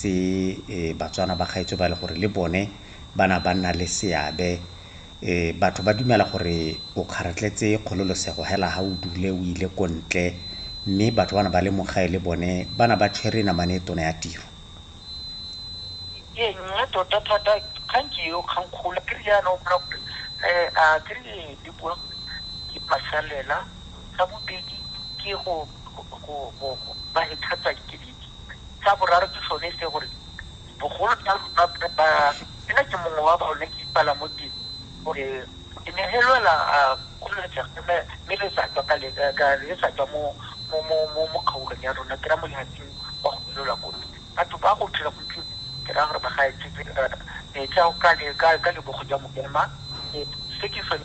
tse Batswana ba gaetsho ba e le gore le bone ba na ba nna le seabe. Batho ba dumela gore o kgaratletse kgololosego hela ha o dule o ile ko ntle, mme batho ba na ba le mo gae le bone ba na ba tshwere namane e tona ya tiro. Ee, mme tota thata kgang ke eo, kgang kgolo ke re jaana o kry-a gore a ke re le bua gore ke masalela. Sa bobedi ke go ba headhutter ke. Sa boraro ke sone se gore bogolo jang ba nna ke mongwe wa bone ke ipala mo teng gore ke ne helwela kgololetsega mme mme le sa tswa ka le ka le sa tswa mo mo mo mo mo kgaolong ya rona ke ra mo lehatsing wa go ilolwa ko batho ba go tshela go tlile ke ra gore ba ga e tsetse metsa ka le ka ka lebogo jwa mokema se ke sone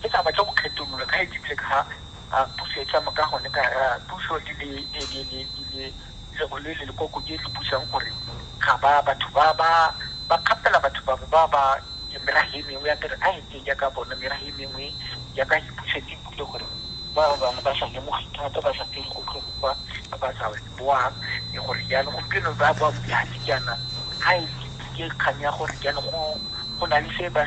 Ke tla batla go kgetolola ka edi bile ka ga puso e tsamaya ka gone ka ga puso e le e le le le le le go le le le koko e le busang gore ga ba batho ba ba ba kgapela batho ba ba ba ke mera he mengwe ya kere a e teng ya ka bona mera he mengwe ya ka e puso e bule gore ba ba ba sa lemogi thata ba sa tsere go tlo go kwa ba sa boa e gore ya le gompieno ba ba mo dihatsi kana ha e ke kgang ya gore kana go go na le se ba